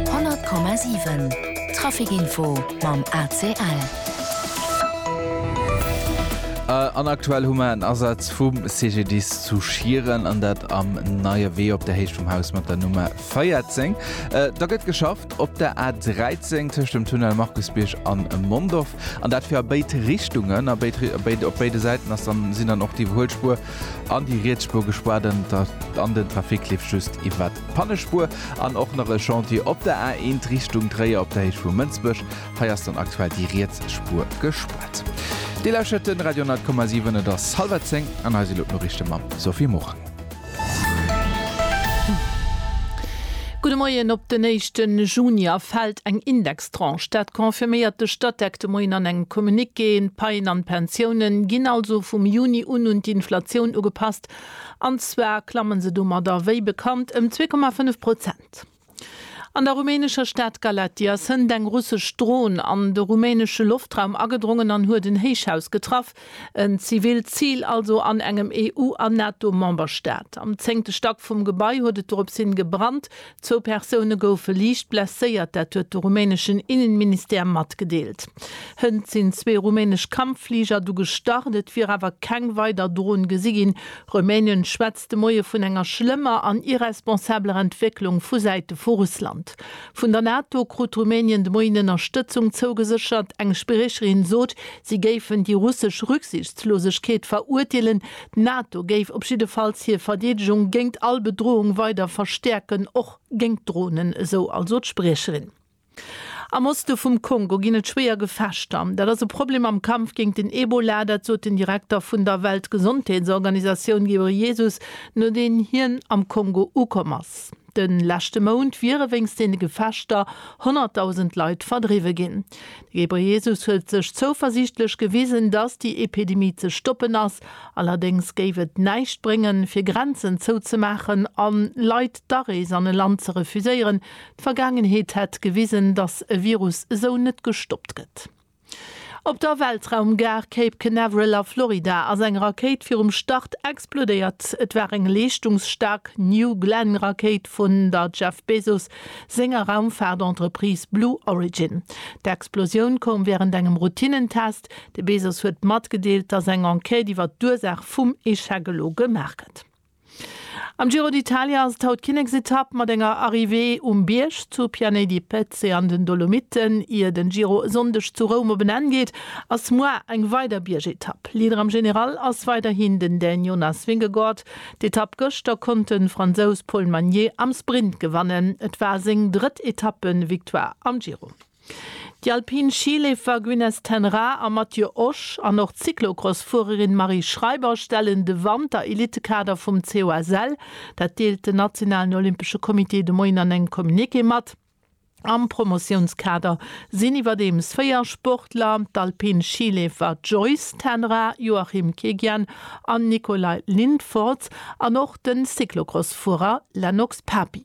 100,7 Trafic-Info mam ACL. An aktuell hu mer en Asaz vum CGDIS zu Schieren, an dat am Neie Wee op der Héicht vum Haus mat der Nummer 14. Da gëtt geschafft op der A 13 tëscht dem Tunnel Markusbierg an Mondorf, an dat fir a béid Richtungen. A béid a béid op béide Säiten ass dann sinn dann och déi Iwwerhuelspuer an déi riets Spuer gespaart an den Trafic leeft just iwwer Pannespur an och nach e Chantier op der A1 Richtung Tréier op der Héicht vu Mënsbech. Hei ass dann aktuell déi riets Spur gespaart. Dir lauschert de Radio 10,7, et ass hallwer zéng an hei si lo d'Noriichte mam Sophie Morang. Gudde Moien. Op den éischte Juni erfält eng Indextranche. Dat confirméiert de Statec de Moien an engem Communiqué. D'Paien an d'Pensiounen ginn also vum Juni un un d'Inflatioun ugepasst. An zwar klammen se domadder, wéi bekannt, ëm 2,5 Prozent. An der rumänescher Stad Galatia sënnt eng russesch Dron an de rumänesche Loftraum agedrongen an huet en Héichhaus getraff, en zivilt Zil also an engem EU a NATO-Memberstaat. Am zéngte Stack vum Gebai huet et doropshin gebrannt, Zwou Persoune goufe liicht blesséiert, dat huet de rumäneschen Innenministère matgedeelt. Hënt sinn zwee rumänesch Kampffliger du gestart, et wier awer keng weider Drohn gesi ginn. Rumänien schwätzt de Moie vun enger schlëmmer an irresponsabeler Entwécklung vu Säite vu Russland. Vun der NATO krut Rumänien de Moien Ënnerstëtzung zougeséchert. Eng Spriecherin sot, si géifen déi russesch Rücksichtslosegkeet verurteelen, D'NATO géif op jiddefalls hir Verdeedegung géint all Bedroung weider verstäerken, och géint Dronen, esou also d'Spriecherin. Am Oste vum Kongo ginn et schwéier Gefechter. Dat ass e Problem am Kampf géint den Ebola, dat sot den Direkter vun der Weltgesondheetsorganisatioun Ghebreyesus, nodeem hien am Kongo ukomm ass. De leschte Mount wiere wéinst deene Gefechter honnertdausend Leit verdriwwe ginn. De Ghebreyesus huet sech zouversiichtlech gewisen, datt déi Epidemie ze stoppen ass. Allerdéngs géif et näischt bréngen, fir Grenzen zouzemaachen a Leit d'Arees an e Land ze refuséieren. D'Vergaangenheet hätt gewisen, datt e Virus esou net gestoppt gëtt. Op der Weltraumgare Cape Canaveral a Florida ass eng Rakéit virum Start explodéiert. Et war eng leeschtungsstaark New Glenn Rakéit vun der Jeff Bezos senger Raumfaart-Entreprise Blue Origin. D'Explosioun koum wärend engem Routinnentest. De Bezos huet matgedeelt, datt eng Enquête iwwer d'Ursaach vum Echec elo gemaach gëtt. Am Giro d'Italia ass et haut d'Kinneksetapp mat enger Arrivée um Bierg zu Pianey di Pezze an den Dolomiten. Ier den Giro e Sonndeg zu Roum op en Enn geet, ass muar eng weider Biergetapp. Leader am General ass weiderhin den Dän Jonas Vingegaard. D'Etapp gëschter konnt den Fransous Paul Magnier am Sprint gewannen. Et war seng drëtt Etappe-Victoire am Giro. Déi alpin Schileefer Gwynneth ten Raa a Mathieu Osch an och d'Cyclocross-Fuererin Marie Schreiber stellen de Wanter-Elitekader vum COSL. Dat deelt den nationalen olympesche Comité de Moien an engem Communiqué mat. Am Promotiounskader sinn iwwerdeems véier Sportler, d'alpin Schileefer Joyce ten Raa, Joachim Kegian an Nicolai Lindfortz an och de Cyclocross-Fuerer Lennox Papi.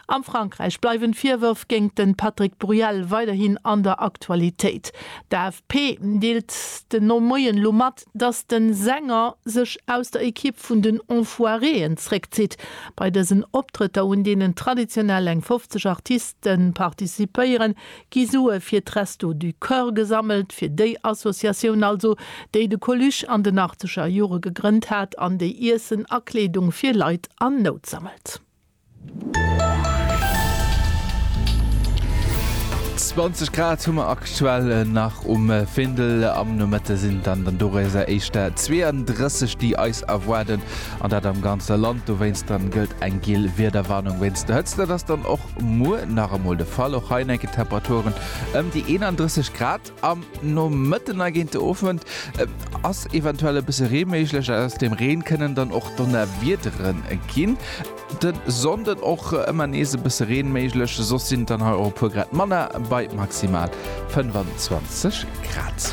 Am Frankräich bleiwen d'Virwërf géingt den Patrick Bruel weiderhin an der Aktualitéit. D'AFP deelt den no Moien lo mat, dass den Sänger sech aus der Equipe vun den Enfoiré'en zréckzitt. Bei dësen Optrëtter, un deenen traditionell eng 50 Artisten participéieren, gi Sue fir d'Restos du Cœur gesammelt, fir déi Associatioun also, déi de Coluche an den 80er Jore gegrënnt hat an déi Iessen a Kleedung fir Leit an Nout sammelt. Zwanzeg Grad hu mer aktuell nach um Findel. Am Nomëtte sinn dann dann doréiser éischter 32, déi eis erwaarden, an dat am ganze Land. Dowéinst dann gëllt eng giel Wiederwarnung wéinst der Hëtzt. Dat ass dann och muer nach emol de Fall. Och hei enke Temperaturen ëm déi 31 Grad. Am Nomëtten a géint de Owend ass eventuell e bësse Ree méiglech. Aus dem Reen kënnen dann och Donnerwiedere ginn. De Sonnden och ëmmer nees e bësse Reen méiglech, soss sinn et dann hei och e puer Grad manner bei maximal 25 Grad.